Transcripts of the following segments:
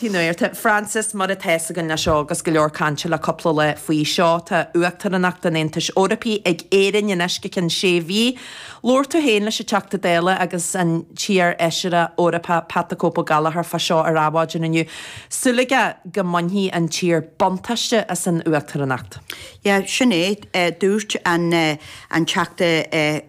Fionnuarta, Frances, mar atá 'fhios againn le seo agus go leor cainte le cúpla lá faoi seo. Tá Uachtaránacht an Aontais Eorpaigh ag Éirinn anois go cionn sé mhí. Labhair tú féin leis an Teachta Dála agus an t-iar-Fheisire Eorpach Pat the Cope Ó Gallchóir fá seo ar Adhmhaidin inniu. Súil aige go mbainfidh an tír buntáiste as an Uachtaránacht. Yeah, sin é a dúirt an Teachta.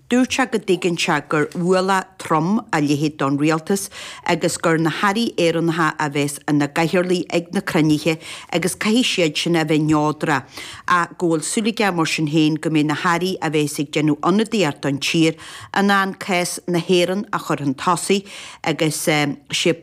Dúirt sé go dtuigeann sé gur ualach trom a leithéid don rialtas agus gur na hairí Éireannacha a bheas ina gcathaoirligh ag na cruinnithe agus caithfidh siad sin a bheith neodrach ach go bhfuil súil aige mar sin féin go mbeidh na hairí a bheas ag déanamh ionadaíocht don tír in ann cás na hÉireann a chur chun tosaigh agus sé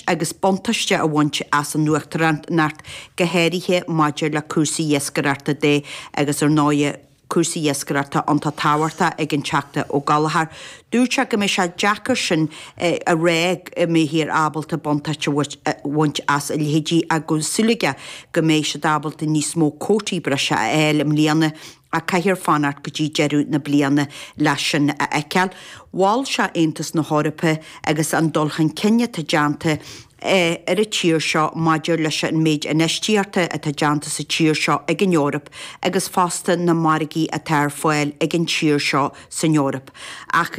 agus buntáiste a bhaint as an Uachtaránacht, go háirithe maidir le cúrsaí iascaireachta de agus ar ndóigh, Cúrsaí iascaireachta iontach tábhachtach ag an Teachta Ó Gallchóir. Dúirt sé go mbeidh sé deacair sin a ráit an mbeidh siad ábalta buntáiste a bhaint as a leithéidí ach go bhfuil súil aige go mbeidh siad ábalta níos mó cótaí breise a fháil i mbliana ach caithfear fanacht go dtí deireadh na bliana le sin a fheiceáil. Mhol sé Aontas na hEorpa agus an dul chun cinn atá déanta ar an tír seo maidir leis an méid infheistíochta atá déanta sa tír seo ag an Eoraip agus fosta na margaí atá ar fáil ag an tír seo san Eoraip. Ach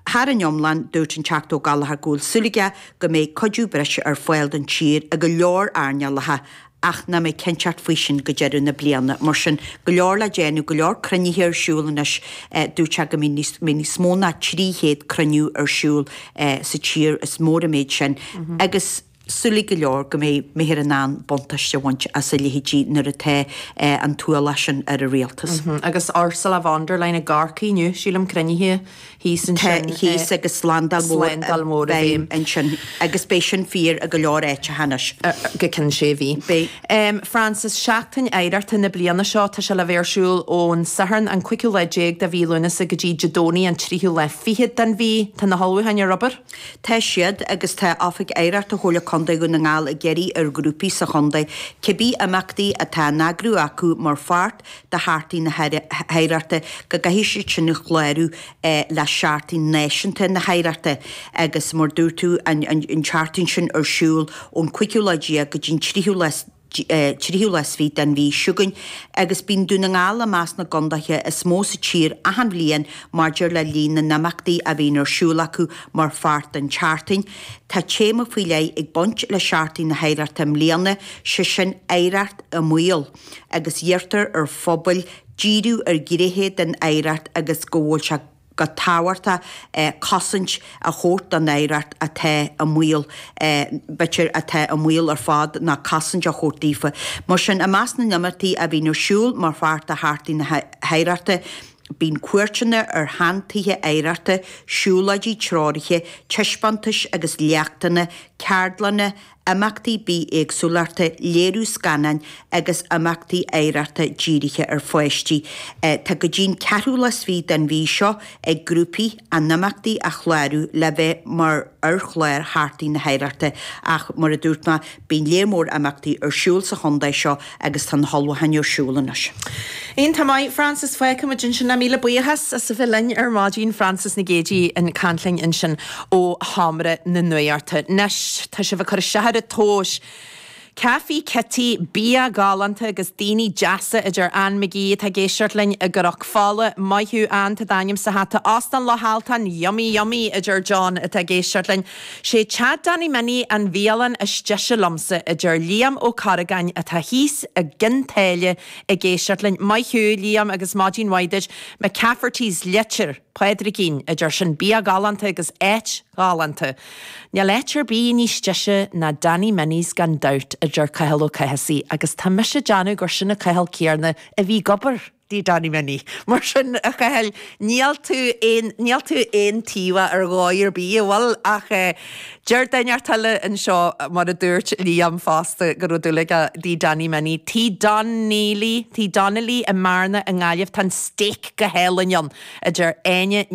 thar an iomlán, dúirt an Teachta Ó Gallchóir go bhfuil súil aige go mbeidh cuidiú breise ar fáil don tír i go leor earnálacha ach nach mbeidh cinnteacht faoi sin go deireadh na bliana. Mar sin, go leor le déanamh, go leor cruinnithe ar siúl anois, dúirt sé go mbeidh níos, mbeidh níos mó ná 300 cruinniú ar siúl sa tír, is mór an méid sin, agus súil ag go leor go mbeidh mbeifear in ann buntáiste a bhaint as a leithéidí nuair atá an t-ualach sin ar an rialtas. Agus Ursula von der Leyen i gCorcaigh inniu, sílim, cruinnithe Tá thíos agus slándáil mhór i bhfeidhm ansin, agus beidh sin fíor i go leor áiteacha anois. Go ceann sé mhí. Beidh. Frances, Seachtain oidhreachta na bliana seo tá sé le bheith ar siúl ón Satharn an cúigiú lá déag de mhí Lúnasa go dtí Dé Domhnaigh an tríú lá fichead den mhí. Tá na hullmhúcháin ar obair. Tá siad, agus tá Oifig Oidhreachta Chomhairle Contae Dhún na nGall ag iarraidh ar ghrúpaí sa chontae cibé imeachtaí atá á n-eagrú acu mar pháirt de Sheachtain na hOidhreachta go gcaithfidh siad sin a chlárú le Seachtain Náisiúnta na hOidhreachta agus mar dúirt tú an tseachtain sin ar siúl ón cúigiú lá déag go dtí'n tríú lá tríú lá 's fiche den mhí seo chugainn agus bíonn Dún na nGall i measc na gcondaetha is mó sa tír achan bhliain maidir le líon na n-imeachtaí a bhíonn ar siúl acu mar pháirt den tseachtain. Tá téama faoi leith ag baint le Seachtain na hOidhreachta i mbliana, sé sin Oidhreacht i mBaol. agus iarrtar ar phobail díriú ar ghnéithe den oidhreacht agus go bhfuil sé go tábhachtach cosaint a thabhairt don oidhreacht atá i mbaol. B'fhéidir atá i mbaol ar fad ná cosaint a thabhairt daofa. Mar sin, i measc na n-imeachtaí a bhíonn ar siúl mar pháirt de Sheachtain na hOidhreachta, bíonn cuairteanna ar shean-tithe oidhreachta, siúlóidí treoraithe, taispeántais agus léachtanna, ceardlanna imeachtaí bithéagsúlachta, léiriú scannáin agus imeachtaí oidhreachta dírithe ar pháistí. Tá go dtí'n 4ú lá is fiche den mhí seo ag grúpaí a n-imeachtaí a chlárú le bheith mar ar chlár Sheachtain na hOidhreachta ach, mar a dúirt mé, bíonn lear mór imeachtaí ar siúl sa chontae seo Agus tá na hullmhúcháin ar siúl anois. Iontach maith, Frances, fágfaimid ansin é. Míle buíochas as a bheith linn ar maidin, Frances Nic Géadaigh ag caint linn ansin ó Sheomra na Nuachta. Anois, tá sibh ag cur isteach ar an tomhas. Caife Kitty, bia galánta agus daoine deasa a deir Ann McGee atá ag éisteacht linn i gCnoc Fola, maith thú Ann, tá d'ainm sa hata, Óstán Loch Altáin, yummy yummy a deir John atá ag éisteacht linn, Sé Teach Danny Minnie an bhialann is deise liomsa, a deir Liam Ó Corragáin atá thíos i gCionn tSáile ag éisteacht linn. Maith thú, Liam, agus maidin mhaith duit. McCafferty's Leitir Pádraigín, a deir, sin bia galánta agus áit ghalánta. Níl áit ar bith níos deise ná Danny Minnie's gan dabht, a deir Cathal Ó Cathasaigh, agus tá mise ag déanamh gur sin an Cathal céarna a bhí ag obair. i dTigh Danny Minnie. Mar sin a Chathail, níl tú aon, níl tú aontaobhach ar dhóigh ar bith, a bhfuil? Ach eh, deir duine inteacht eile anseo, mar a dúirt Liam fosta, go raibh dúil aige i dTigh Danny Minnie. Tigh Donnelly, Tigh Donnelly i mBearna i nGaillimh, tá an steak go hálainn ann, a deir Áine Nic.